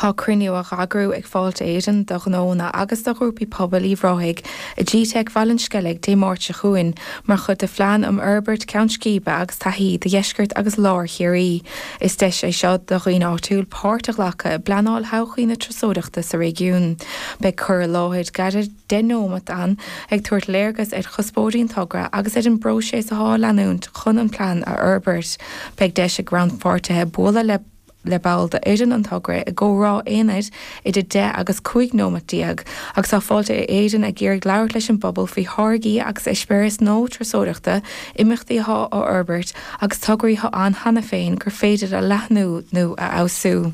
Tá cruinniú á eagrú ag Fáilte Éireann do ghnónna agus do ghrúpaí pobail Uíbh Ráthaigh i gteic Bhaile an Sceilg Dé Máirt seo chugainn mar chuid de phlean um fhorbairt ceann scríbe agus taithí do dheisceart agus lár Chiarraí. Is deis é seo do dhaoine áitiúil páirt a ghlacadh i bpleanáil thodhchaí na turasóireachta sa réigiún. Beidh cur i láthair gearr 10 neomat ann ag tabhairt léargas ar chuspóirí an togra agus ar an bpróiseas athá á leanúint chun an plean a fhorbairt. Beidh deis ag rannpháirtithe bualadh le. le ball d'fhoireann an togra i gcomhrá aonair idir deich agus cúig nóimeat déag, agus tá Fáilte Éireann ag iarraidh labhairt leis an bpobal faoi tháirgí agus eispéiris nua turasóireachta, imeachtaí atá á fhorbairt agus tograí atá ann cheana féin gur féidir a leathnú nó a fheabhsú.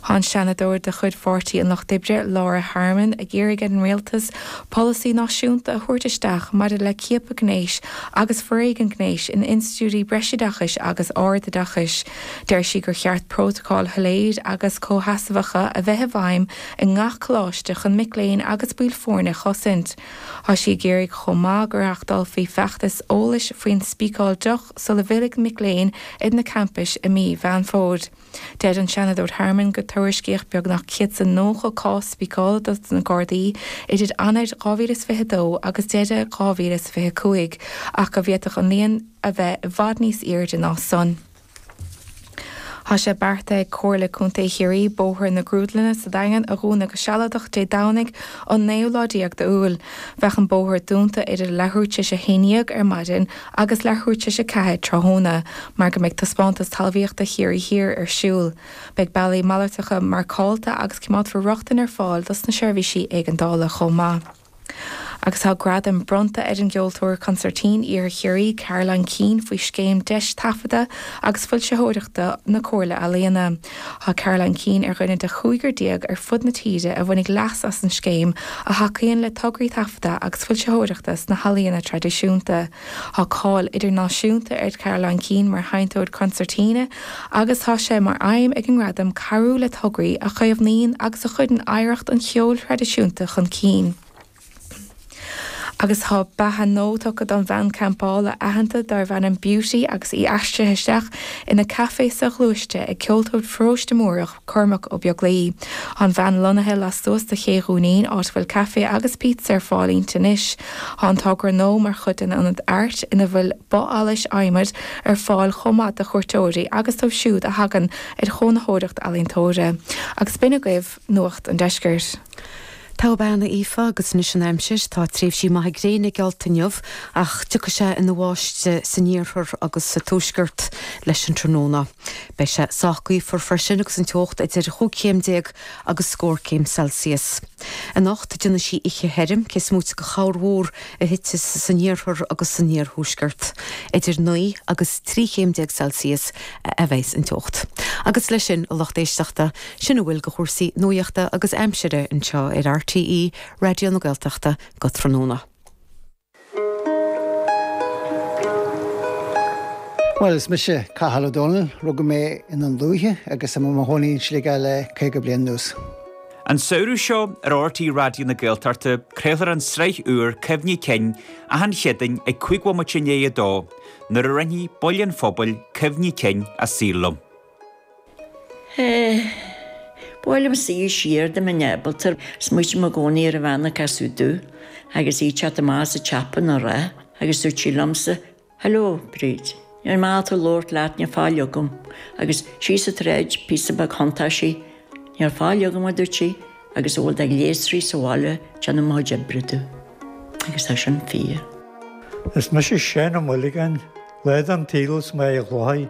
Tá an Seanadóir de chuid Pháirtí an Lucht Oibre, Laura Harmon, ag iarraidh ar an Rialtas, Polasaí náisiúnta a thabhairt isteach maidir le ciapadh gnéis agus foréigean gnéis in institiúidí breisoideachais agus ardoideachais. Deir sí gur cheart prótacail shoiléir agus comhsheasmhacha a bheith i bhfeidhm i ngach coláiste chun mic léinn agus baill foirne a chosaint. Tá sí ag iarraidh chomh maith go reáchtálfaí feachtas eolais faoin spíceáil deoch sula bhfillfidh mic léinn ar na campais i mí Mheán Fómhair. Deir an Seanadóir Harmon gur tuairiscíodh beagnach 190 cás spíceála do na Gardaí idir Eanáir 2022 agus deireadh 2025 ach go bhféadfadh an líon a bheith i bhfad níos airde ná san. Tá sé beartaithe ag Comhairle Contae Chiarraí Bóthar na Grúdlainne sa Daingean a dhúnadh go sealadach Dé Domhnaigh an naoú lá déag d'Iúil. Beidh an bóthar dúnta idir leathuair tar éis a haon dhéag ar maidin agus leathuair tar éis a 4 tráthnóna mar go mbeidh Taispeántas Talmhaíochta Chiarraí Thiar ar siúl. Beidh bealaí malartacha marcálta agus coimeádfar rochtain ar fáil dos na seirbhísí éigeandála chomh maith. Agus tá gradam bronnta ar an gceoltóir consairtín Iarthar Chiarraí, Caroline Keane, faoi scéim deis taifeadta agus foilsitheoireachta na Comhairle Ealaíona, Tá Caroline Keane ar dhuine de chúigear déag ar fud na tíre a bhainfidh leas as an scéim, a thacaíonn le tograí taifeadta agus foilsitheoireachta sna healaíona traidisiúnta. Tá cáil idirnáisiúnta ar Charoline Keane mar sheinnteoir concertina agus tá sé mar aidhm ag an nGradam cabhrú le tograí a chaomhnaíonn agus a chuireann oidhreacht an cheoil thraidisiúnta chun cinn. agus tá beatha nua tugtha don bhean champála aitheanta darbh ainm Beauty agus í aistrithe isteach ina caifé soghluaiste ag ceoltóir Pharóiste Múrach, Cormac Ó Beaglaoich. Tá an veain lonnaithe lastuas de Ché Dhúinín, áit a bhfuil caife agus pizza ar fáil inti anois. Tá an togra nua mar chuid den Ionad Airt ina bhfuil both allais adhmaid ar fáil chomh maith do chuairteoirí agus dóibh siúd a thagann ar chónaitheoireacht ealaíontóra. Agus b'in agaibh Nuacht an Deiscirt. Togha mná, Aoife, agus anois an aimsir, tá tréimhsí maithe gréine geallta inniu ach tiocfaidh sé ina bháisteach san iarthar agus sa tuaisceart leis an tráthnóna. Beidh sé sách gaofar freisin agus an teocht idir chúig chéim déag agus scór céim Celsius. Anocht déanfaidh sí oíche thirim, cé is móite de chorrmhúr a thitfidh san iarthar agus san iarthuaisceart. Idir naoi agus trí chéim déag Celsius a bheas an teocht. Agus leis sin, a lucht éisteachta, Sin a bhfuil de chúrsaí nuachta agus aimsire anseo ar RTÉ Raidió na Gaeltachta go tráthnóna. Bhuel, is mise Cathal Ó Dónaill. Rugadh mé i nDún Lúiche agus tá mé i mo chónaí in Sligeach le caoga bliain anuas. An samhradh seo ar RTÉ Raidió na Gaeltachta craolfar an tsraith úr Cuimhní Cinn achan Chéadaoin ag cúig bhomaite i ndiaidh a dó, nuair a roinnfidh baill an phobail cuimhní cinn a saol liom. Buailim soir siar de mo neamhbhalter, smaoitim i gcónaí ar an bhean a casadh domh agus í ag teacht amach as an tsiopa ina raibh, agus dúirt sí liomsa, Hello, Bríd, níl mé ag dul a labhairt leat, níl faill agam, agus síos an tsráid, píosa beag thiontaigh sí, Níl faill agam, a dúirt sí, agus a bhfuil de ghléasraí sa bhaile ag déanamh mo chuid oibre domh. Agus tá sin fíor. Is mise Seán Ó Muilleagáin, lá den tsaol is mé i ghlóthaí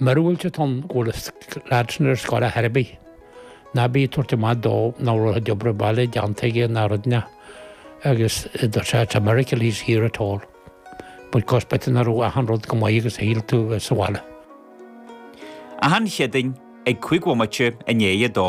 Míorúilt atá ann go bhfuil an lad sin ar scoil ar chor ar bith. Ná bí ag tabhairt amach dó nach raibh a chuid obair bhaile déanta aige ná rud ná agus it's just a miracle he's here at all. Because b'fhéidir nach raibh achan rud chomh maith agus a shíl tú sa bhaile. Achan Chéadaoin ag cúig bhomaite i ndiaidh a dó.